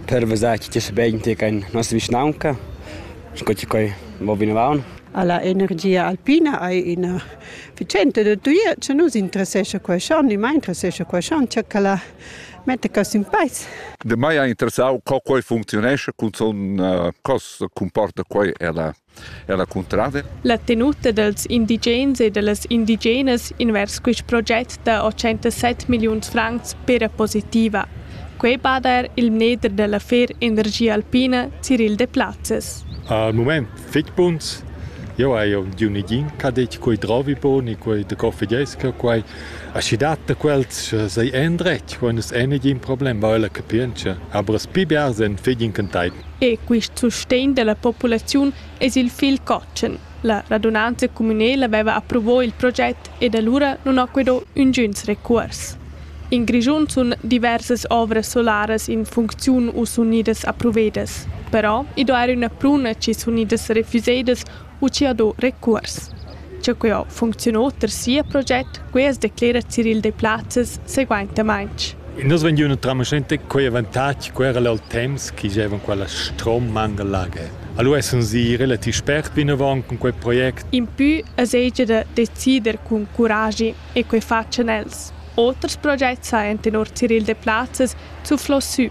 Per vesar chi sta bain tier in nossa vischnaunca, sco chi quei mo vinavon. Alla energia alpina hai ina vicenda da tuia che nus interessescha quei schon, ni mai interessescha quei schon, che la metta cos in peis. De mai ha interessau co quei funcziunescha, cun son uh, cos comporta quei ella Er la cuntrada? La tenuta dals indigens e da las indigenas invers quist proget da 87 milliuns francs pera positiva. Quai bada er il mneder da l'affer Energia Alpina Cyril Deplazes. Al mument fitg buns. Eu haiu di un igin ch'ha dit quei drovi boni, quei de coffigesca, quei aschi dat da quels sei endretg, quando es ein igin problem, weil er capientscha. Aber es pi biars en figin can E quist sustegn della populaziun es il figl cotschen. La radunanza cumünela vaiva approvò il proget ed alura nun ho que do üngüns recuors. In Grischun sun diversas ovras solaras in funcziun u s'unidas approvedas. Però i do eir üna pruna chi sun idas refüsedas Uschia do recuors. Cha que ho funcziunà ter sia proget, quia as declera Ciril Deplazes seguaintamaing. E nus vegn üna tramascenta quei avantatg quera lal temps chi gievan quella strom mangalage. Allora essans i relativ spert vinavant cun quei project. Impü as hegia da decider cun curagi e quei fachan els. Oters progets ha enten or Ciril Deplazes zuflo sü.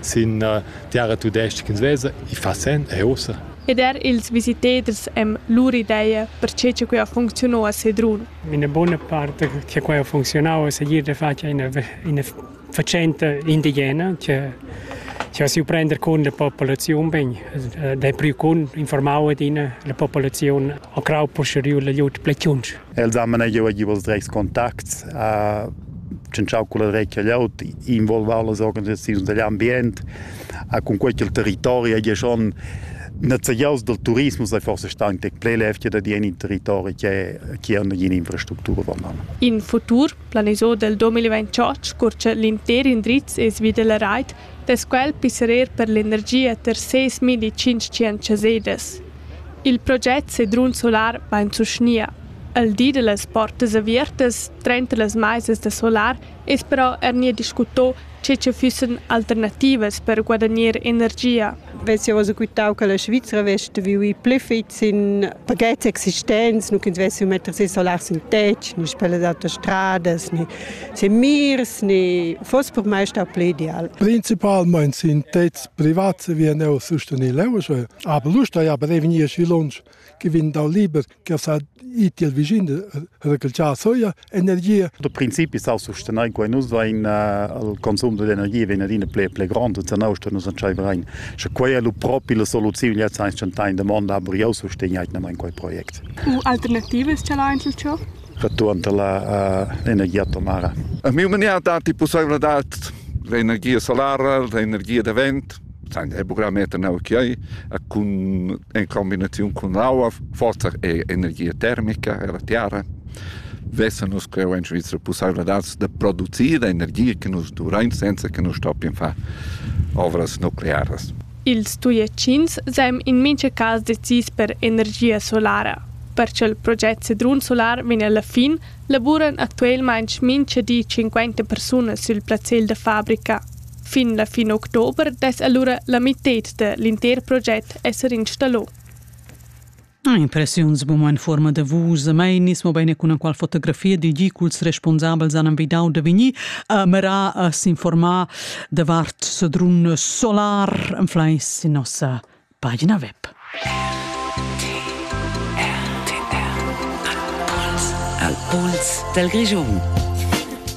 sin terra tudestga che svesa, i fa sen e ossa. Ed er ils visitaders han lur ideia per che quai ha funcziunà a Sedrun. Una buona parte che quai ha funzionau è seguir de fatg una, una faccenda indigena che che si prender con la popolazione ben dai più con informare din la popolazione a crau posterior la jut plechunch Els han manegiau a giu els dretgs contacts, a tschintschau culla dretga glieud, involvau las organisaziuns digl ambient, a cun quei ch'il territori hagi schon nezegiaus dal turismus ei forse stau tec pli lev che dad in in territori che che ha nagina infrastructura vondan. In futur planisau del 2028 curcia l'intер indriz e svi della rait dess quel pisserer per l'energia ter ses milli tschintg chasedas. Il project Sedrun Solar vain sustgnia. El di da las portas aviertas trenta las maisas da solar es però er gnir discuto che cha füssan alternativas per guadagner energia. vess jau quitau che la Svizra vess viu i pli fit sin pagets existents, nu ch'ins vessi metter si solar sin tetg, ni per las autostradas, ni sin mirs, ni foss per mai stau pli ideal. Principalmein sin tetgs privats vien eu sustenil eu, aber lust ja prevegnir schi lunsch che vegn dal liber che sa it il vicin recalciar soia energia. Da principi sa sustenair in quai nus vain al consum d'energia vegn adina ple ple grand e zanau sto nus entscheiver rein. Sche quai è lu propi la soluziun jetzt ein schon in domanda aber jau sustegniert in quel projekt. U alternativas ce l'ha einzel ciò? Return la uh, energia atomara. A mio mania dati possibilità l'energia solara, l'energia da vent Sein buccameter neu chiai cun in combinaziun cun aua, forsa er energia termica ella tiara. Vesa nus cheu en Svizra pussaivladads da producir energia che nus duvrein senza che nus stoppien far ovras nuclearas. Ils Tujetschins seign in mintga cas decis per energia solara. Per ch'il project Sedrun Solar vegn alla fin, lavuran actualmein mintga di 50 persunas sil plazzal da fabrica. Fin la fin october dess allura la mited da l'inter proget esser installò. Ah, impressiuns buma in forma da vus, mai nis mo bene con qual fotografia di gi culs responsabels han invidau da vegni a mera a s'informar davart sedrun solar en fleis in nossa pagina web. Al pols del Grigion.